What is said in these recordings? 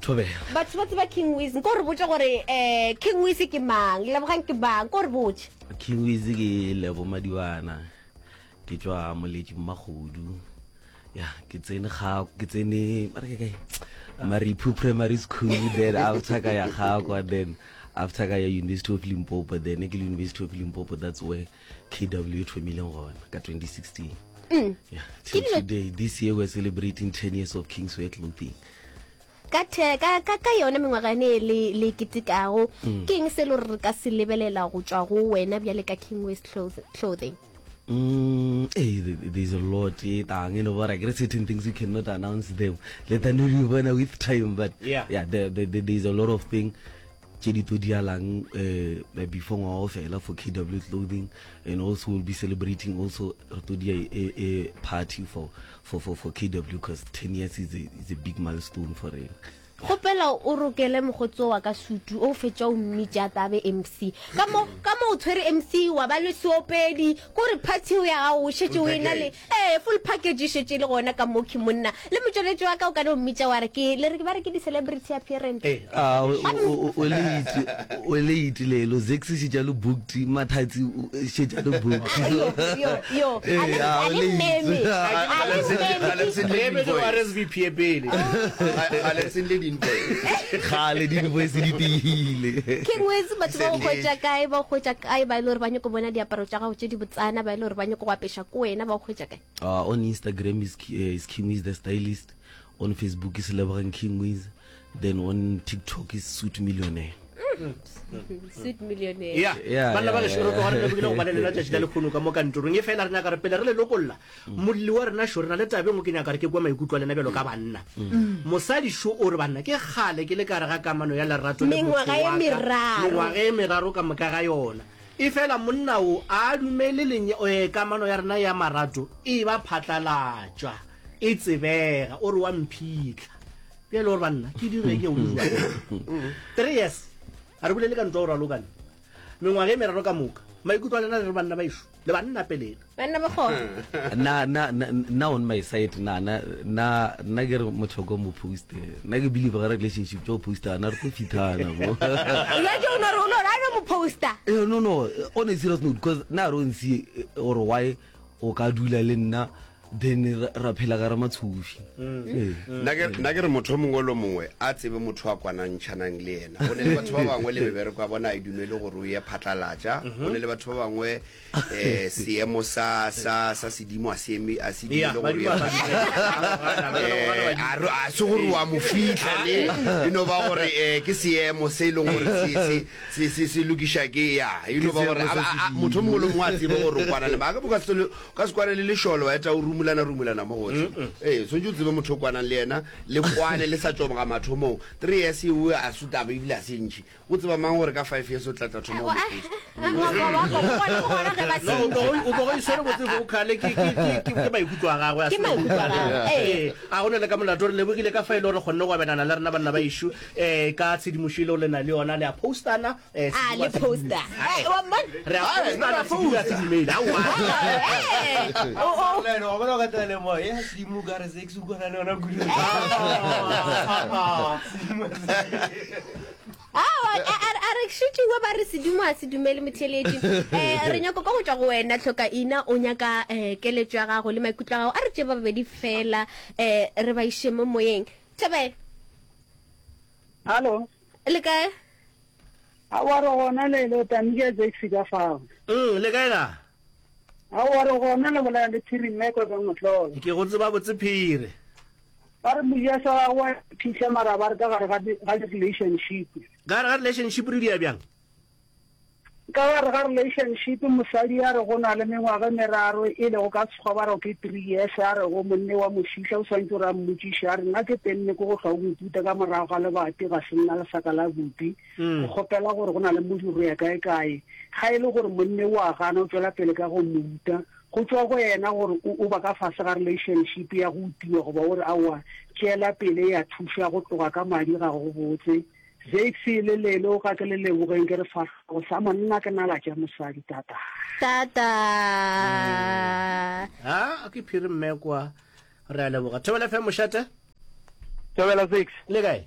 thobela batho ba tseba king wise nko re botse gore um king wise ke mang lebogang ke mang ko re botse king wise ke lebo madiwana ke tswa moletši mmagodu ya ke tsene ga ke tsene mare ke kae maripu primary school then after ka ya gakwa then after ka ya university of limpopo then ke le university of limpopo that's where kw thomileng gona ka 2016 mm. yeah, till today this year we're celebrating 10 years of king's way clothing ka ka ka ka yone mengwaga ne le le kitikago mm. ke eng se lo re ka se lebelela go tswa go wena bjale ka king west clothing Mm, hey, eh, there's a lot eh, tang, you know, but I guess certain things we cannot announce them. Let them know with time, but yeah, yeah there, there, there's a lot of things tše di tlo dialang uh, before ngwaga o fela for kw clothing and also we'll be celebrating also re tlo dia a, a party for, for, for, for kw because 10 years is a, is a big milestone for rena kgopela o rokele mogotso wa ka sutu o fetša o mmitše a tabe mc ka mo o tshwere mc wa ba le seopedi ko re party ya gago o šetse o e na le Ee, full package e šetše e le gona ka mokhwi monna. Le motšweletši wa ka o ka no mmitša wa re ke, le re ba re ke di-celebrity appearance. A o, o, o, o late, o late le lo Zakes šetša lo booked, Mathatsi o šetša lo booked. So, Yo, yo, yo. A le, ee, a a o le mmeme. late. A ke A le Gale se- mmeme. gale se- Re emetse go RSVP e pele. Ga- ga le send le di-invoice. Kgale di-invoice di tiile. Ke ngwetse batho ba go Settle. hwetša kae, ba go hwetša kae ba e le gore ba nyako bona diaparo tša gago tše di botsana, ba e le gore ba nyako go apeša ko wena ba o hwetša kae uh, on instagram is, uh, is king wiz the stylist on facebook is lebogang king wiz then on tiktok is suit millionaire sweet millionaire yeah Yeah, banna ba yeah, gešo re tloga re yeah. lebogile go balelela tšatši la lekgono ka mo kantorong e fela re nyaka re pele re le lokolla molli wa rena šo re na le tabeng o ke nyaka re ke kwa maikutlwa lena bjalo ka banna mosadi šo o re banna ke kgale ke le ka re ga kamano ya lerato le Mengwaga motho e wa ka. meraro. mengwaga e meraro ka moka ga yona Efela monna wo a a dumele le kamano ya rena ya marato e eba phatlalatšwa, e tsebega. O re, Wa mphihla. Bjale o re, Banna, ke dire ke go jwang? Three years. Ga re bolele ka ntwa o ralokane. Mengwaga e meraro ka moka. Maikutlo a lena le re, Banna baešo, le banna peleng. banna ba kgona na na na on my side na na na na ke re motlhoko mo post na ke believe ga relationship jo post ana re go fithana bo ya jo no ro no ra mo poster eh no no on a serious note because na ro ntsi or why o ka dula le nna then ra phela ga re matshofi mm. eh. mm. na ke re motho mongwe lo mongwe a tsebe motho a kwanantšhanang le ena go ne le batho ba bangwe le mebereko ya bona a e dumele gore o ye phatlalatša go mm-hmm. ne le batho ba bangwe eh, seemo sa sa sa sedimo a se eme a se di le gore ya a a se gore wa mo fitla le you know ba gore eh ke seemo se e leng gore se se se se se lokisha ke ya you know ba gore motho mongwe le mongwe a tsebe gore o kwana le ba ka boka se ka se kwane le lesholo wa eta o rumulana rumulana mo gotlhe eh so ntse tsebe motho o kwanang le yena le kwane le sa tšoboga mathomong 3 years e a sutaba ebile a se ntšhi O tseba mang gore ka five years o tlatla thoma go mpogo iswere botse vocale ke maikutlo a gagwe a ga o ne le ka molato re lebogile ka fa e le gore kgonne go abelana le rena banna ba išu um eh, ka tshedimošo e le o le na le yona le a postana eh, ah, re a postana sedira se dimele aoa a re šutiwe ba re sedimo a se dumele motheletši um eh, re nyako ka go tšwa go wena tlhoka ina o nyaka um keletso ya gago le maikutlo a gago a re tše ba babedi fela um re ba iše mo moyeng thabele hallo le kae a wa re gona lelo tamika jaxi ka fao mm le kae ga Aowa, re gona le bolela le Phiri mme kwa ka mohlolo. Ke go tseba botse Phiri. Ba re moya sa gago wa phihla mara ba re ka gare ga ga relationship. Ka gare ga relationship re dia bjang? Ka gare ga relationship mosadi a re go na le mengwaga meraro e le go ka tshwa ba re ke three years a re go monne wa mosihla o swantse o re a mmotšiša a re nna ke tenne ko go hlwa o mputa ka morago ga lebati ga se nna lesaka la bupi go kgopela gore go na le modiro go ya kae-kae. Ga e le gore monna o a gana, o tšwela pele ka go mo uta. Go tšwa go yena gore o, o ba ka fase ga relationship ya go utiwa goba o re aowa, tšeela pele ya thuša go tloga ka madi ga go botse. Zakes le lele o ka ke le lebogeng ke re fahlogo sa monna ke nala tša mosadi tata. Tata. Ha, ke phiri mme kwa. Re a leboga. Thobela FM mošate. Thobela Zakes. Le kae?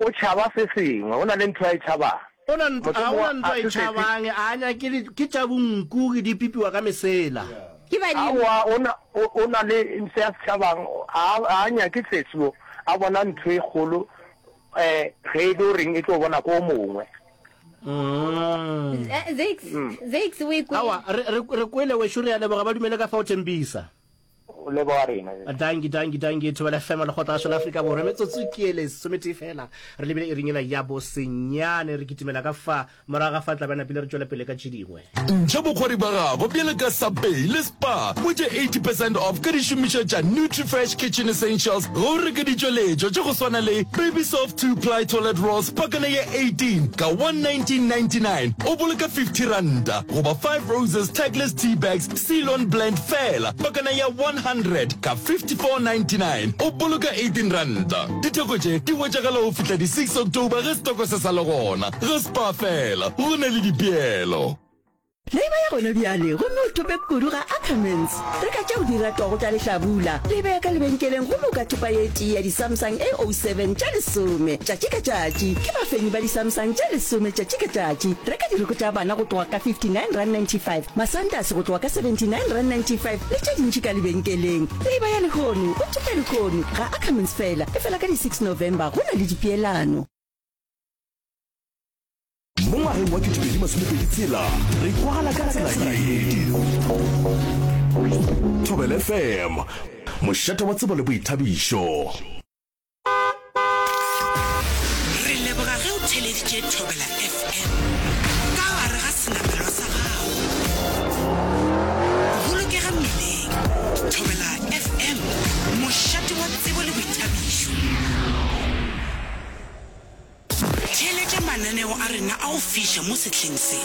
O tšhaba se sengwe. O na le ntho a e tšhabang. O na le ntho, a o na le ntho a e tšhabang, a a nyake di, ke tša bonku, ke di pipiwa ka mesela. Ke badimo. Aowa, o na, o, o na le se a se tšhabang. A a, a a nyake sesi wo. A bona ntho e kgolo, eh, ge e le o reng e tlo bona ko o mongwe. Z, Zakes, Zakes, o e kwele? Aowa, re, re, re kwele wešo, re a leboga, ba dumele ka fao, Thembisa. O leboga rena bjale. Danki, danki, danki. Thobela FM, Lekgotla la Šo la Afrika Borwa. Metsotso ke ele sometee feela. Re lebile iring ela ya bo senyane. Re kitimela ka fa morago ga fa tlabe a napile re tšwele pele ka tše dingwe. Ntšha bokgwari bja gago bjalo ka Subway le Spar. Hwetša 80 percent off ka dišomišwa tša Nutrifresh Kitchen Essentials ge o reka ditšweletšwa tša go swana le Baby Soft Two Ply Toilet Rolls pakana ya 18 ka 119.99, o boloka 50 ranta, goba Five Roses Tagless Tea Bags Ceylon Blend feela pakana ya 100 ka 54.99 o boloka 18 ranta. Ditheko tše di hwetšagala go fihla di 6 October ge setoko se sa le gona. Ge Spar feela go na le dipeelo. Leiba ya gona bjale gomme o thope kudu ga Ackermans. Reka tše o di ratago tša lehlabula, le e bee ka lebenkeleng gomme o ka thopa ye tee ya di-Samsung A07 tša lesome tšatši ka tšatši. Ke bafenyi ba di-Samsung tša lesome tšatši ka tšatši. Reka diroko tša bana go tloga ka R59.95 Masantase go tloga ka 79 rand 95 le tše dintši ka lebenkeleng. Leiba ya lehono, o tšeka lehono, ga a Cummins fela, efela ka di 6 November go na le dipeelano. Mo ngwageng wa 2020 tshela re kwala ka tsela ye. Thobela FM, mošate wa tsebo le boithabišo. re leboga ge o theleditše thobela fm ka gare ga senamelwa sa gago bolokega mmileng thobela fm mošate wa tsebo le boithabišo theeletša mananeo a rena a go fiša mo sehleng se